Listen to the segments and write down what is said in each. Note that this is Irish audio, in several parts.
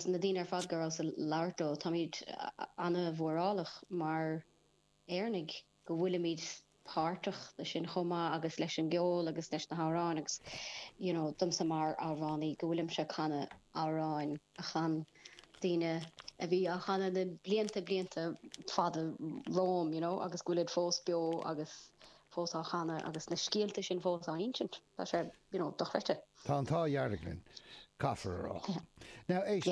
Na daoine ar fad go rabhas ag labhairt leo, táimid an-mhórálach mar Éireannaigh go bhfuilimid páirteach ansan chomh maith agus leis an gceol agus leis na hamhráin agus you know domsa mar amhránaí go bhfuilimse ag canadh amhráin a chan daoine a bhí á chanadh na blianta blianta fada romham you know agus go bhfuilid fós beo agus fós á chanadh agus na scéalta sin fós á insint. Tá sé. you know, dochreidte. Tá an t-ádh dhearg linn, caithfear a rá. Now, éist,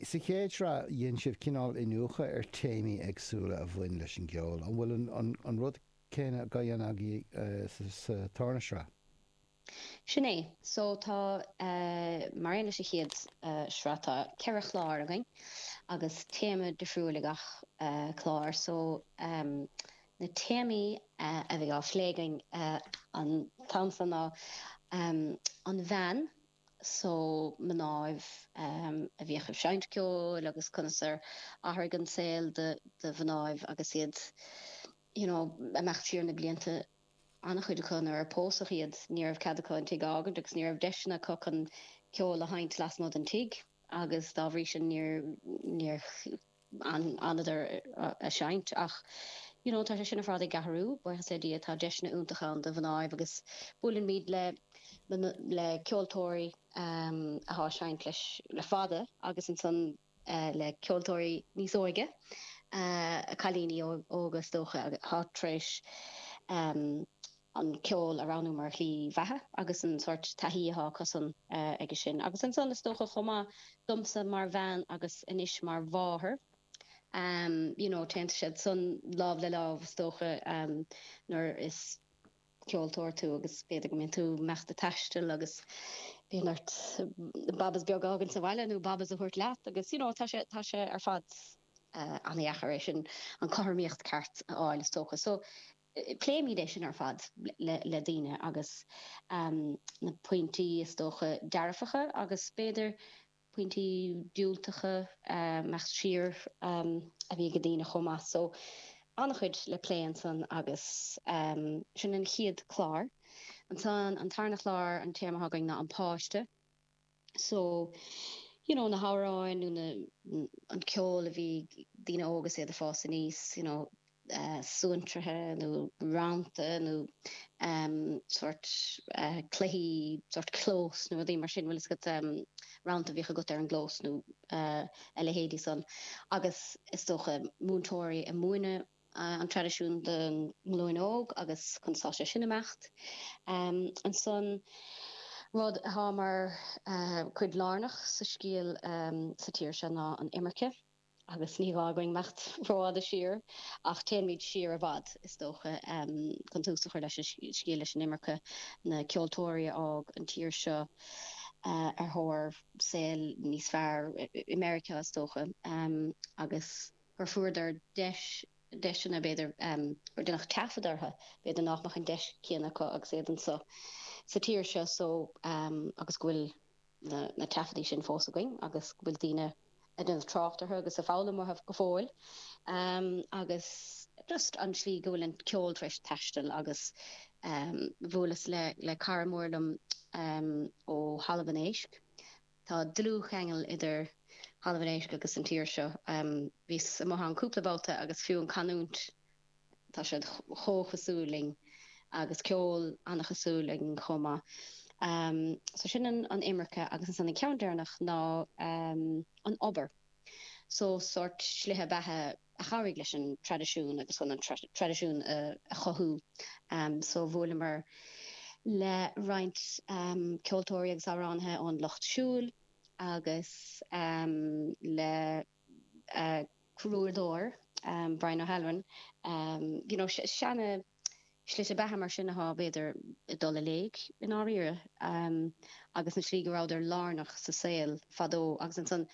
sa chéad shraith dhein sibh cineál iniúchadh ar téamaí éagsúla a bhain leis an gceol, an bhfuil an rud céanna á dhéanamh agaibh sa tarna shraith? Sin é. So tá, mar aon leis an chéad shraith, tá ceithre chlár againn agus téama difriúil ag gach clár. So, Na téamaí a bhí á phlé againn an t-am seo ná an bhean so, mnáibh a bhíodh ag seinnt ceoil agus conas ar athraigh an saol do mhnáibh agus iad you know, i bhfad siar na blianta, an-chuid acu nuair a pósadh iad ní raibh cead acu an tigh a fhágaint agus ní raibh deiseanna acu chun ceol a sheinnt lasmuigh den tigh agus dá bhrí sin níor fhanadar a' seinnt ach you know tá sé sin ar fad ag athrú buíochas le Dia, tá deiseanna iontacha ann do mhnáibh agus buailimid le, le, le ceoltóirí ehm athá seinnt le le fada agus ansan eh le ceoltóirí níos óige, eh cailíní óga is dócha athá tréis ehm. an ceol a roghnú mar shlí bheatha agus an sórt taithí atá acusan aige sin. Agus ansan, is dócha chomh maith, domsa mar bhean agus anois mar mháthair, you know, téann siad san lámh le lámh, is dócha, nuair is ceoltóir tú agus b'fhéidir go mbíonn tú imeachta ag taisteal agus bíonn ort babas beag a fhágaint sa bhaile nó babas a thabhairt leat agus, you know, tá sé, tá sé ar fad an-dheacair é sin, an cothramaíocht ceart a fháil, is dócha. So. Pléimid é sin ar fad le daoine agus na pointí is dócha dearfacha agus b'fhéidir pointí diúltacha, i bhfad siar, a bhí ag daoine chomh maith. So, an-chuid le plé ansan agus sin an chéad chlár. Ansan, an tarna chlár, an téama againn ná an páiste. So, you know, na hamhráin nó na, an ceol a bhí ag daoine óga 's iad a' fás aníos, you know, suantraithe nó rannta nó ehm sórt cluichí, sórt clós nó rudaí mar sin, bhfuil 'fhios agat, ehm rannta a bhíodh agat ar an gclós nó a leithéidí san agus is dócha múinteoirí a' múineadh, an traidisiún don ghlúin óg agus cá bhfuil sé sin ag imeacht. Ansan, rud atá mar chuid lárnach sa scéal sa tír seo ná an imirce agus ní gá againn imeacht rófhada siar ach téanfaimid siar i bhfad, is dócha, chun tús a chur leis an scéal leis an imirce, na ceoltóirí a fhág an tír seo ar thóir saol níos fearr, i Meiriceá is dócha, agus. gur fuaireadar deiseanna, b'fhéidir, gur deineadh taifead orthu, b'fhéidir nach mbeadh an deis chéanna acu agus iad anseo sa tír seo so agus go bhfuil na taifeadtaí sin fós againn agus go bhfuil daoine ag déanamh trácht orthu agus ag foghlaim uathu go fóill agus just an tslí go bhfuil an ceol tar éis taisteal agus bhuaileas le cara mór liom ó Thalamh an Éisc. Tá dlúthcheangal idir Thalamh an Éisc agus an tír seo. Bhíos amuigh ann cúpla babhta agus fiú an canúint, tá siad chomh cosúil linn, agus ceol an-chosúil againn chomh maith. So sin an imirce agus ansan an ceann deireanach ná an obair. so sórt slite beatha a chabhraigh leis an traidisiún agus chun an traidisiún a chothú so bhuaileamar le roinnt ceoltóirí agus amhránaithe ón lucht siúil agus le crúdóir Brian O'Halloran, you know, seana. slite beatha mar sin atá, b'fhéidir, ag dul i léig i ndáiríre, agus an slí go rabhadar lárnach sa saol fadó, agus ansan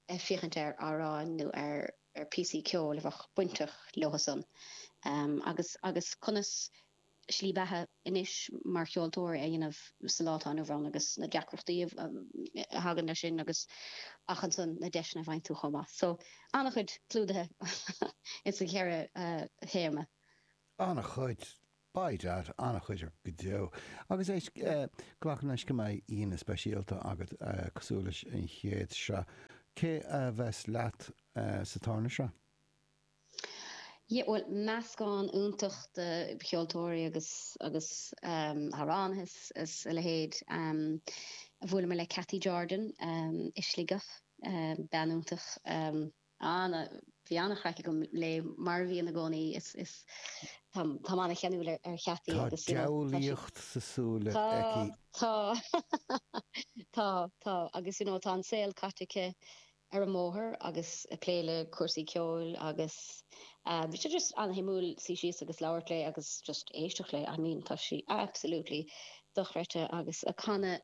ag féachaint ar amhráin nó ar phíosaí ceoil a bheadh bainteach leothusan, agus agus conas slí beatha anois mar cheoltóir a dhéanamh sa lá atá inniu ann, agus na deacrachtaí a thagann leis sin, agus ach ansan na deiseanna a bhaineann leis chomh maith. So, ana-chuid clúdaithe ins na ceithre théama. An-chuid, by dad, an-chuid go deo. Agus é, glacaim leis go mbeidh aíonna speisialta agat cosúil leis an chéad shraith. Cé a bheas leat sa tarna sraith? Yeah, bhuel, meascán iontach de cheoltóirí agus agus amhránaithe is a leithéid. Bhuaileamar le Cathy Jordan i Sligeach, bean iontach. Á, bhí an-chraic agam léi mar a bhíonn i gcónaí is is táim an-cheanúil ar Chathy Tá agus you know tá diabhlaíocht sna súile Tá, aici. tá, tá, tá agus you know tá an saol caite aici ar an mbóthar agus ag plé le cúrsaí ceoil agus eh bhí sé just an-shuimiúil suí síos agus labhairt léi agus just éisteacht léi. I mean tá sí absolutely dochreidte agus ag canadh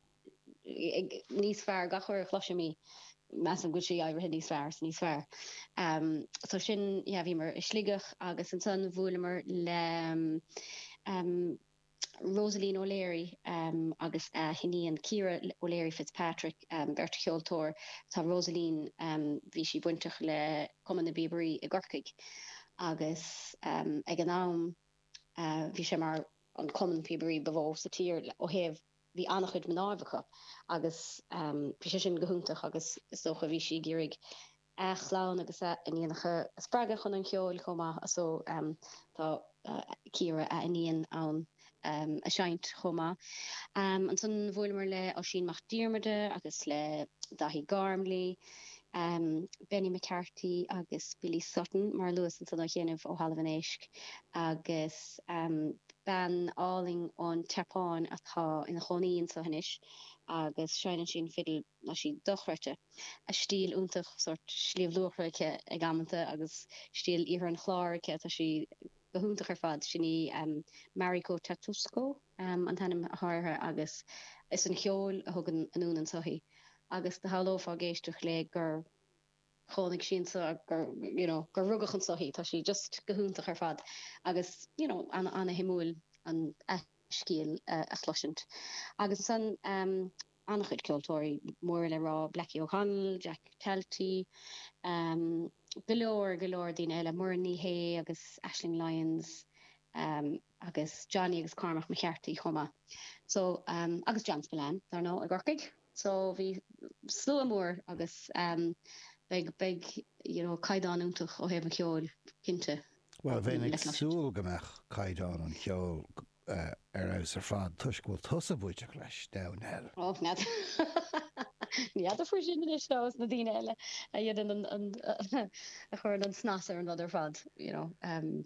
níos fearr, gach uair a chloisim í measaim go bhfuil sí éirithe níos fearr is níos fearr. So sin, yeah bhíomar i Sligeach agus ansan bhuaileamar le Rosaleen O'Leary agus a hiníon Ciara O'Leary Fitzpatrick, beirt cheoltóir, tá Rosaleen, bhí sí bainteach le Cumann na bPíobairí i gCorcaigh agus ag an am bhí sé mar an cumann píobairí ba mhó sa tír ó thaobh, Bhí an-chuid mná acu agus bhí sé sin go hiontach agus is dócha bhí sí ag iarraidh a clann agus a hiníonacha a spreagadh chun an cheoil chomh maith so tá Ciara, a hiníon, in ann seinnt chomh maith. Ansan bhuaileamar le Oisín Mac Diarmada agus le Daithí Gormley, Benny McCarthy agus Billy Sutton mar a luas ansan nóiméad ó shin ó Thalamh an Éisc agus. bean álainn ón tSeapáin atá ina cónaí anseo anois agus seinneann sí an fidil tá sí dochreidte, tá stíl iontach, sórt Sliabh Luachra aici ag amanta agus stíl Iarthar an Chláir aici, tá sí go hiontach ar fad. Sin í Mariko Tatsuko an t-ainm atá uirthi agus is é an ceol a thug anonn anso í agus do shamhlófá ag éisteacht léi gur. chónaigh sí anseo gur, you know, gur rugadh anseo í, tá sí just go hiontach ar fad agus, you know, ana-shuimiúil an scéal a chloisint agus ansan, ehm, ana-chuid ceoltóirí móra le rá, Blackie O'Connell, Jack Talty, ehm, go leor, go leor daoine eile, Muireann Ní Shé agus Aisling Lyons, ehm. agus Johnny agus Cormac McCarthy chomh maith so agus John Spillane dar ndóigh i gCorcaigh so bhí slua mór agus beidh, beidh you know caighdeán iontach ó thaobh an cheoil cinnte. Bhuel bheinn ag súil go mbeadh caighdeán an cheoil ar fheabhas ar fad toisc go bhfuil tusa bainteach leis, a Dhoireann. Och, ní fheadar faoi sin anois, ó, is na daoine eile a dhéanann an, a chuireann an snas ar an rud ar fad. you know,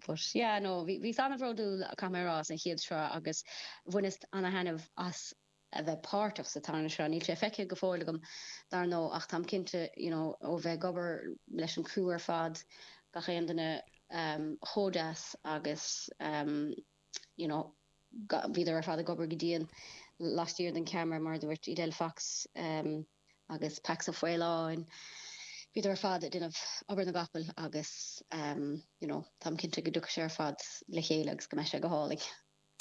but yeah, no, bhíos an-bhródúil, caithfidh mé a rá, as an gcéad sraith agus bhaineas an-thaitneamh as a bheith páirteach sa tarna sraith. Níl sé feicthe go fóill agam, dar ndóigh, ach táim cinnte, you know, ó bheith ag obair leis an gcriú ar fad, gach aon duine chomh deas agus, you know, bhíodar ar fad ag obair go dian laistiar den cheamara, mar a dúirt Edel Fox. agus Pax Ó Faoláin, bhíodar ar fad ag déanamh obair na gcapall agus you know táim cinnte go dtiocfaidh sé ar fad le chéile agus go mbeidh sé go hálainn.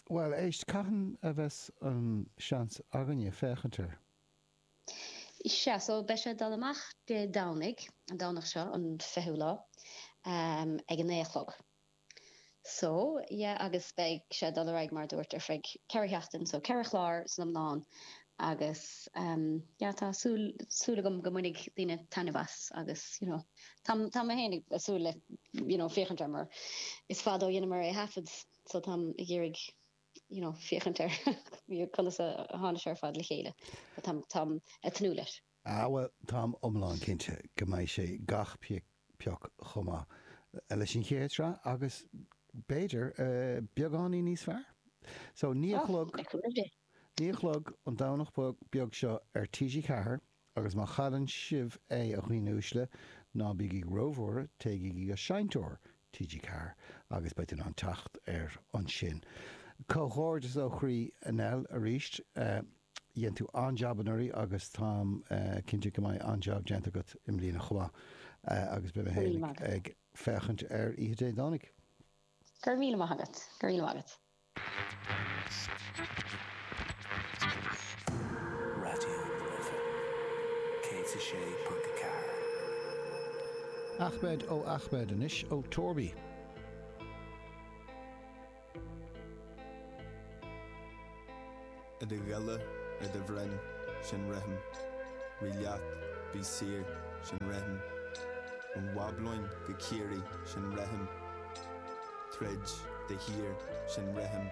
Bhuel, éist, cathain a bheas an seans againne féachaint air? Sea, so beidh sé ag dul amach Dé Domhnaigh, an Domhnach seo, an fichiú lá, ag a naoi a chlog. So, yeah agus beidh sé ag dul ar aghaidh mar a dúirt ar feadh ceithre sheachtain, so ceithre chlár san iomlán agus ehm yeah tá súil, súil agam go mbainfidh daoine taitneamh as agus you know tá, tá mé féin ag súil le you know féachaint air mar is fada ó dheineamar é a thaifead so táim ag iarraidh you know féachaint ar conas a tháinig sé ar fad le chéile but táim, táim ag tnúth leis. Ah bhuel, táim iomlán cinnte go mbeidh sé gach pioc chomh maith leis an chéad sraith agus b'fhéidir beagáinín níos fearr! So, naoi a chlog, naoi a chlog an Domhnach beag seo ar TG Ceathair agus má chailleann sibh é, a dhaoine uaisle, ná bígí róbhuartha, téigí go seinnteoir TG Ceathair agus beidh tú in ann teacht air ansin. Comhghairdeas ó chroí, Nell, arís. Dhein tú an-jab anuraidh agus táim cinnte go mbeidh an-jab déanta agat i mbliana chomh maith agus beidh mé Go raibh míle féin maith agat. ag féachaint air oíche Dé Domhnaigh. Go raibh míle maith agat. Go raibh míle maith agat. Raidió na Life 106.4. Ahmed O Ahmed anois ó Torby. I do ghile, i do bhroinn, sin rithim, rith leat, bí saor, sin rithim, ón Bhablóin go Ciarraí, sin rithim, troid de shíor, sin rithim.